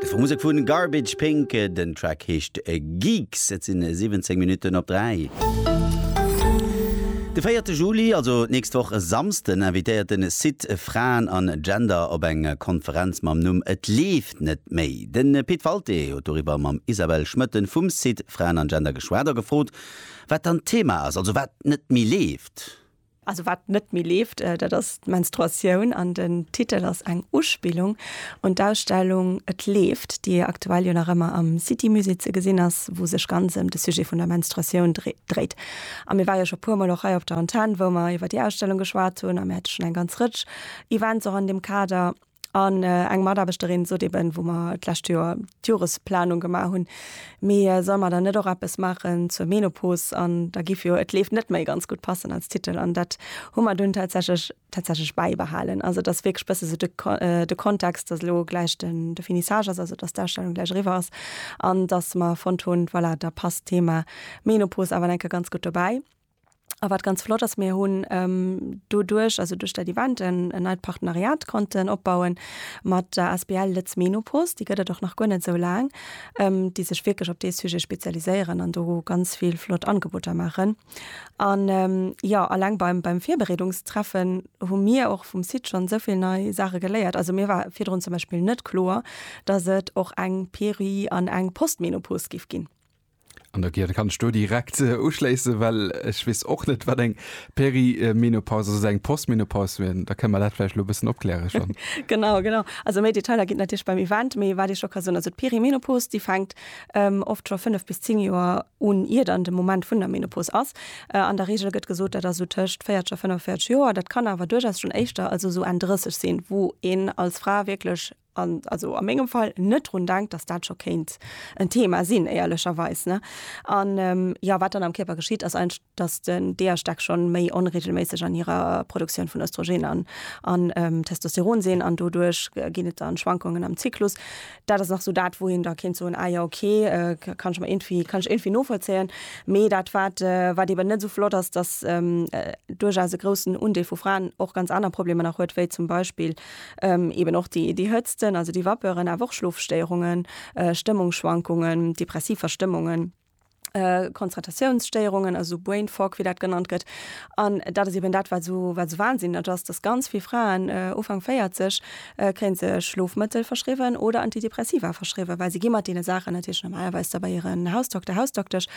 De vu Musek vun Garbage Pink, den Track heescht Geeks. Et sinn 17 Minutten op 3. De 4 Juli, also d'nächst Woch e Samsden, invitéiert den Site Fraen an Gender op eng Konferenz mam Numm Et leeft net méi. Den Pit Walté huet doriwwer mam Isabelle Schmoetten vum Site Fraen an Gender geschwat a gefrot, wat dann d'Thema ass, also wat net méi leeft. Also wat net méi leeft, dat ass d'Menstruatioun an den Titel ass eng Uspillung un d'Ausstellung Et leeft, déi aktuell jo nach ëmmer am City-Musée ze gesinn ass, wou sech ganz ëm de Sujet vun der Menstruatioun dréit. A mir ware jo scho puer Mol och hei op der Antenn, wou mer iwwer déi Ausstellung geschwat hunn a mir hätte schonn eng ganz Rëtsch Events och an deem Kader. An eng Mataarbechterin sot eben, wou mer d'lescht Joer d'Joresplanung gemaach hunn, mee solle mer dann net och eppes maachen zur Menopos? An da géif jo Et leeft net méi ganz gutt passen als Titel. An dat hu mer dunn tatsächlech tatsächlech bäibehalen. Also et ass wierklech bësse sou de de Kontext, datt elo gläich den de Finissage ass, also datt d'Ausstellung gläich eriwwer ass an datt mer fonnt hunn, voilà, da passt d'Thema Menopos awer enke ganz gutt dobäi. A wat ganz flott ass, mir hunn doduerch, also duerch dat Event, en neit Partenariat konnten opbauen mat der Asbl Lëtz Menopost, déi gëtt et och nach guer net esou laang, déi sech wierklech op dee Sujet spezialiséieren an do ganz vill flott Angeboter maachen. An, jo, alleng beim, beim Virbereedungstreffen hu mir och vum Site schonn esou vill nei Saache geléiert. Also mir war virdrun zum Beispill net kloer, dass et och eng Peri an eng Postmenopost géif ginn. An der Gier kann ech do direkt äh, uschléissen, well ech weess och net, wat eng Perimenopaus ass, eng Postmenopaus wien. Da kënne mer dat vläicht lo e bëssen opkläre schonn. genau, genau. Also méi Detailer ginn et natierlech beim Event, mee wat ech scho ka soen, also d'Perimenopaus, déi fänkt ähm, oft scho fënnef bis zéng Joer un, ier dann de Moment vun der Menopaus ass. Äh, an der Reegel gëtt gesot, dat ass sou tëscht 40 a 45 Joer. Dat kann awer duerchaus schonn éischter, also sou Enn 30 sinn, wou een als Fra wierklech an also a mengem Fall net drun denkt, dass dat scho kéint en Thema sinn, éierlecherweis. Ne? An ähm, ja, wat dann am Kierper geschitt, ass einfach, dass den DH-Stack schon méi onregelméisseg an hirer Produktioun vun Östrogen an, an ähm, Testosteron sinn an doduerch äh, ginn et dann Schwankungen am Zyklus. Dat ass nach so dat, wou een da kéint soen, ah ja, okay, äh, kann ech mer irgendwie, kann ech irgendwie novollzéien. Mee dat, wat, äh, wat eben net so flott ass, dass ähm, äh, duerchaus e groussen Undeel vu Fraen och ganz aner Problemer nach huet, wéi zum Beispill Eben och déi Hëtzten, also déi Vapeuren, awer och Schlofstéierungen, Stëmmungsschwankungen, depressiv Verstëmmungen, Konzentratiounsstéierungen, also sou Brain Fog, wéi dat genannt gëtt. An dat ass eben dat, wat esou wahnsinneg ass, dass ganz vill Fraen Ufank 40 kréie se Schlofmëttel verschriwwen oder Antidepressiva verschriwwen, well si gi mat deene Saachen natierlech normalerweis da bei hiren Hausdokter, Hausdoktesch.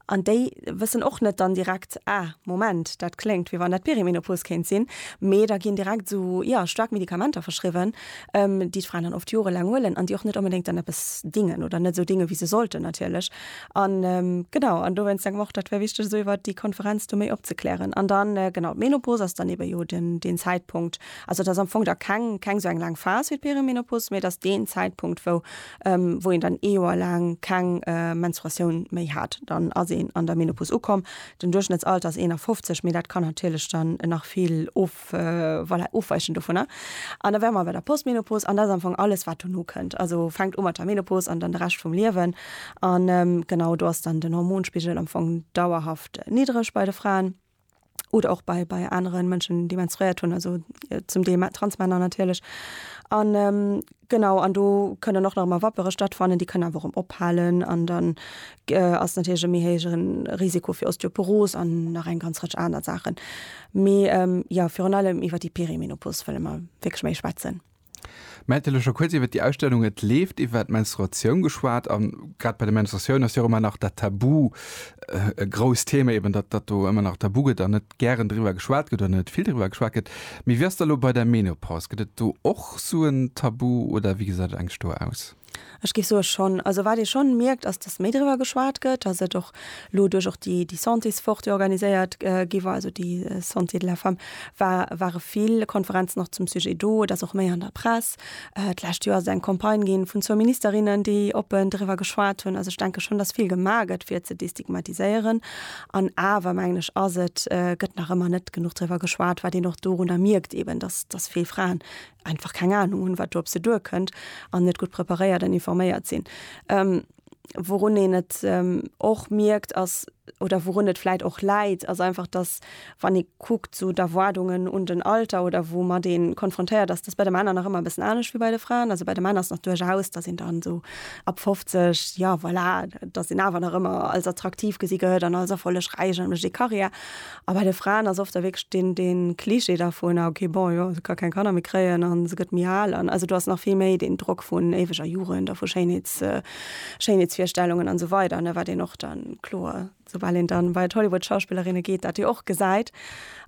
An déi wëssen och net dann direkt, ah, Moment, dat kléngt, wéi wann dat Perimenopos kéint sinn. Mee da ginn direkt esou, jo, staark Medikamenter verschriwwen, déi d'Fraen dann oft jorelaang huelen an déi och net onbedéngt dann eppes dingen oder net esou dingen, wéi se sollten natierlech. An, genau, an dowéinst denke mer och, dat wär wichteg, esou iwwert déi Konferenz do méi opzeklären. An dann, genau, d'Menopos ass dann eebe jo den, deen Zäitpunkt, also et ass am Fong da keng, keng esou eng laang Phas wéi d'Perimenopos, mee et ass deen Zäitpunkt, wou wou een dann ee Joer laang keng Menstruatioun méi hat, dann ass een an der Menopause ukomm. Den Duerchschnëttsalter ass 51, mee dat kann natierlech dann nach vill of, voilà, ofweichen dovunner. An da wäre mer bei der Postmenopause, an dat ass am Fong alles, wat dono kënnt. Also fänkt u mat der Menopause an dann de Rescht vum Liewen. An genau, do ass dann den Hormonspigel am Fong dauerhaft niddreg bei de Fraen. oder och bei, bei aneren Mënschen, déi menstruéiert hunn, also äh, zum Deel Transmänner natierlech. An ähm, genau an do kënnen och nach mal Wappere stattfannen, déi kënnen awer ëm ophalen an dann äh, ass natierlech e méi héigeren Risiko fir Osteoporos an nach eng ganz Rëtsch aner Saachen. Mee ähm, ja virun allem iwwer déi Perimenopos wëlle mer wierklech méi schwätzen. Mä vläicht scho kuerz iwwert déi Ausstellung, Et leeft iwwert d'Menstruatioun geschwat a grad bei der Menstruatioun ass jo och ëmmer nach dat Tabu e grousst Thema, eben datt datt do ëmmer nach tabu gëtt an net gären driwwer geschwat gëtt oder net vill driwwer geschwat gëtt. Mee wéi ass dat elo bei der Menopaus? Gëtt et do och sou en Tabu oder wéi gesäit et eigentlech do aus? Ech géif soe schonn. Also wat ee schonn mierkt ass, datt méi driwwer geschwat gëtt, datt et och elo duerch och déi déi Santéswoch, déi organiséiert gi war, also déi Santé de la femme, war ware vill Konferenzen och zum Sujet do. Et ass och méi an der Press. D'lescht Joer ass et eng Campagne ginn vun zwou Ministerinnen, déi oppen driwwer geschwat hunn. Also ech denke schonn, datt vill gemaach gëtt fir ze destigmatiséieren. An awer mengen ech ass et, gëtt nach ëmmer net genuch driwwer geschwat, wat een och dorunner mierkt eben, datt datt vill Fraen einfach keng Ahnung hunn, wat do op se duerkënnt an net gutt preparéiert an informéiert sinn. Ähm, wourun een et ähm, och mierkt ass, oder wourun et vläit och läit, ass einfach, dass wann ee kuckt zu d'Erwaardungen un den Alter oder woumat ee konfrontéiert ass, dass bei de Männer nach ëmmer e bëssen anescht wéi bei de Fraen. Also bei de Männer ass nach duerchaus, dass een dann esou ab 50, jo voilà, dass een awer nach ëmmer als attraktiv gesi gëtt an als erfollegräich a mécht ee Karriär. A bei de Fraen ass oft da wierklech deen, deen Klischee dervun, ah okay, bon, jo, se ka keng Kanner méi kréien a se gëtt méi al. An also do ass nach vill méi deen Drock vun éiweger Jugend a vu Schéinheets, Schéinheetsvirstellungen an esou weider, ne, wat een och da kloer, soubal een dann bei d'Hollywood-Schauspillerinne geet, dat jo och gesäit.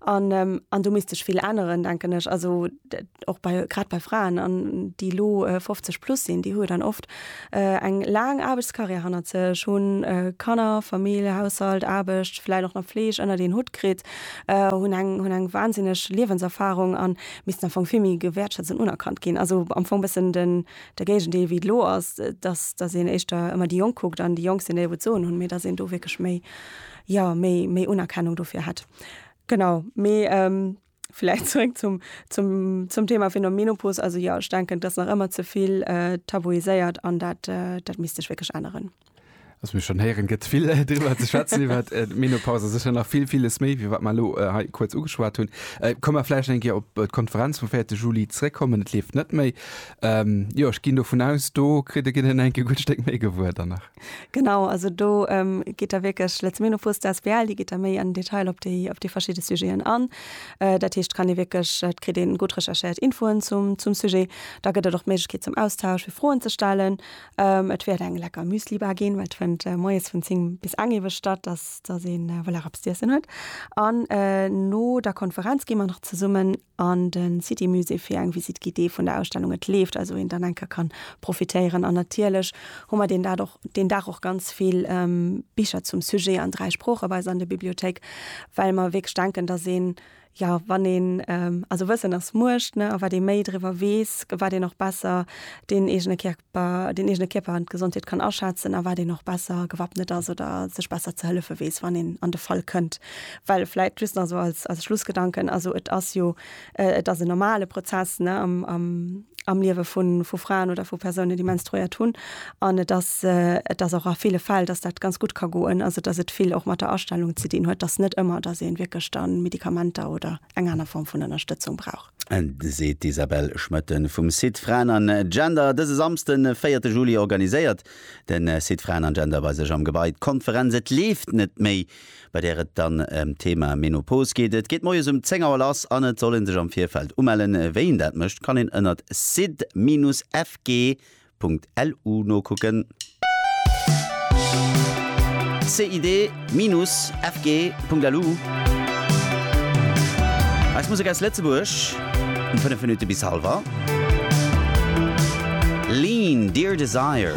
An, an do misst sech vill änneren, denken ech. Also. och bei grad bei Fraen an déi lo 50 äh, plus sinn, déi hu dann oft äh, eng laang Aarbechtskarriär hannert sech, hunn äh, Kanner, Famill, Haushalt, Aarbecht, vläit och nach Fleeg ënner den Hutt kritt, äh, hunn eng hunn eng wahnsinneg Liewenserfahrung an missten am Fong vill méi gewäertschätzt an unerkannt ginn. Also am Fong bëssen den der Géigendeel wéi et lo ass, dass dass een éischter ëmmer déi Jonk kuckt an déi Jonk sinn déi wou d'Soen hunn, mee dass een do wierklech méi ja méi méi Unerkennung dofir hätt. Genau, mee ähm, Vläit zréck zum, zum, zum Thema vun der Menopos. Also jo, ech denken, et ass nach ëmmer ze vill äh, tabuiséiert an dat, äh, dat misst sech wierklech änneren. Also mir schon héieren, gëtt vill äh, driwwer ze schwätzen iwwer äh, d'Menopause. Sicher nach vill, vieles méi, wéi wat mer elo äh, hei kuerz ugeschwat hunn. Äh, Komm mer vläicht eng Kéier op äh, d'Konferenz vum 4. Juli zréckkommen. Et leeft net méi. Ähm, jo, ech ginn dovun aus, do kritt e Ginn en enke gutt Stéck méi gewuer dann nach. Genau, also do ähm, geet der wierklech letz Meno Fus der SBL, déi geet der méi an Detail op déi op déi verschidde Sujeten an. Äh, dat heescht kann ee wierklech et kritt een gutt recherchéiert Infoen zum zum Sujet. Da gëtt et och d'Méiglechkeet zum Austausch fir Froen ze stellen. Ähm, et wäert eng lecker Müslibar ginn, well et fënnt äh, moies vun 10 bis eng ewech statt, dass dass een äh, well er eppes z'iessen huet. An äh, no der Konferenz gi mer nach zesummen an de City Musée fir eng Visite guidée vun der Ausstellung Et leeft, also een dann eng Kéier kann profitéieren. An natierlech hu mer deen Dag och, deen Dag och ganz vill Bicher zum Sujet an dräi Sprooche bei eis an der Bibliothéik, well mer wierklech denken, dass een, jo, wann een, also Wëssen ass Muecht, ne, a wat ee méi driwwer weess, wat een och besser deen eegene Kierper, deen eegene Kierper an d'Gesondheet kann aschätzen a wat een och besser gewappnet ass oder sech besser ze hëllefe weess, wann een an de Fall kënnt. Well vläit just nach esou als, als Schlussgedanken, also et ass jo, et ass en normale Prozess, ne, am, am, am Liewe vu, vu Fraen oder vu Persounen, déi menstruéiert hunn. An et ass, et ass och a ville Fäll, datt dat ganz gutt ka goen, also datt et vill och mat der Astellung ze dinn huet, datt net ëmmer, datt ee wierklech da Medikamenter oder eng aner Form vun Ënnerstëtzung brauch. Seet d'Isabelle Schmoetten vum Site Fraen an Gender. Dëse Samsden, de véierte Juli organiséiert de Site Fraen an Gender bei sech am Gebai d'Konferenz Et leeft net méi bei där et dann ëm d'Thema Menopos geet. Et geet moies um 10 Auer lass an et soll ee sech am Virfeld umellen. Wéi een dat mécht, kann een ënnert sid-fg.lu nokucken. Sid-fg.lu Eis Musek aus Lëtzebuerg um 5 Minutte bis halwer 11. Lean, Dear Desire.